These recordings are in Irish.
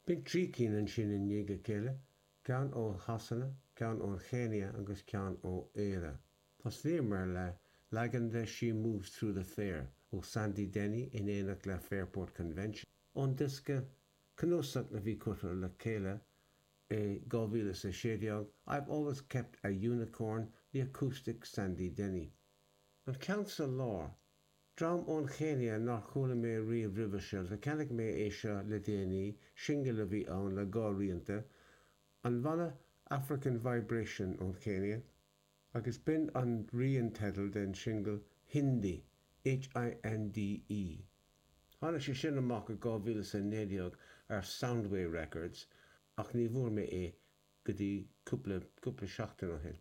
Bhí trí cinn ansin i ndiaidh a chéile, ceann ó Shasana, ceann ón Chéinia agus ceann ó Éire. Thosnaíomar le leagan de 'She Moves Through the Fair' ó Sandy Denny in éineacht le Fairport Convention, ón diosca, cnuasach a bhí curtha le chéile i 2016, 'I've Always Kept a Unicorn, The Acoustic Sandy Denny'. An ceann sa lár, Dream ón Chéinia nár chuala mé riamh roimhe seo, ach cheannaigh mé é seo le déanaí, singil a bhí ann le dhá rianta, an bhanna African Vibration ón Chéinia, agus b'in an rian, teideal, den singil Hinde, H-i-n-d-e. Tháinig sé sin amach i 2019 ar Soundway Records, ach ní bhfuair mé é go dtí cúpla, cúpla seachtain ó shin.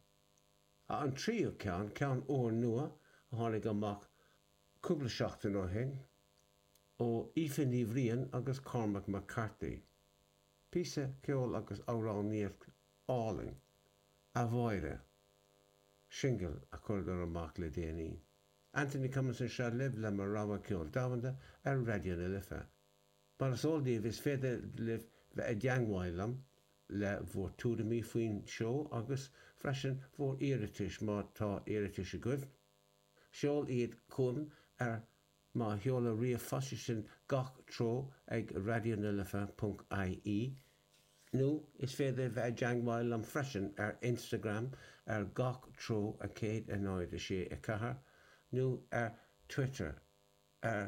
An tríú ceann, ceann úrnua a tháinig amach cúpla seachtain ó shin ó Aoife Ní Bhriain agus Cormac McCarthy. Píosa ceoil agus amhránaíocht álainn, A Mháire, singil a chuireadar amach le déanaí. Anthony Cummins anseo libh le mo rogha ceoil domhanda ar Raidió na Life. Mar is eol daoibh, is féidir libh bheith i dteangmháil liom le bhur tuairimí faoin seó agus freisin bhur iarratais má tá iarratais agaibh. Seol iad chugam ar mo sheoladh ríomhphoist, sin gach treo ag raidionalife.ie nó is féidir bheith i dteangmháil liom freisin ar Instagram ar gach treo 1-0-6-4 nó ar Twitter ar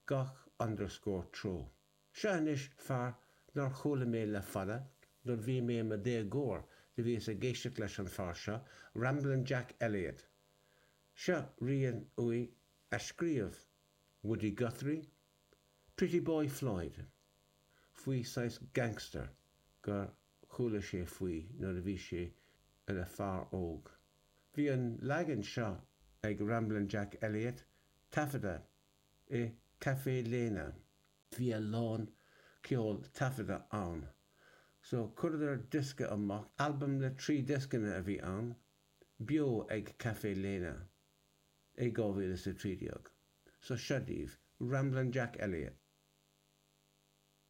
gach underscore treo. Seo anois fear nár chuala mé le fada, nuair bhí mé i mo dhéagóir do bhíos ag éisteacht leis an fear seo, Ramblin' Jack Elliott. Seo rian uaidh a scríobh Woody Guthrie, Pretty Boy Floyd, faoi saghas gangster gur chuala sé faoi nuair a bhí sé ina fear óg. Bhí an leagan seo ag Ramblin' Jack Elliott taifeadta i Caffè Lena. Bhí a lán ceol taifeadta ann, so chuireadar diosca amach, albam le trí dioscanna a bhí ann, beo ag Caffè Lena i 2013. So seo daoibh, Ramblin' Jack Elliott.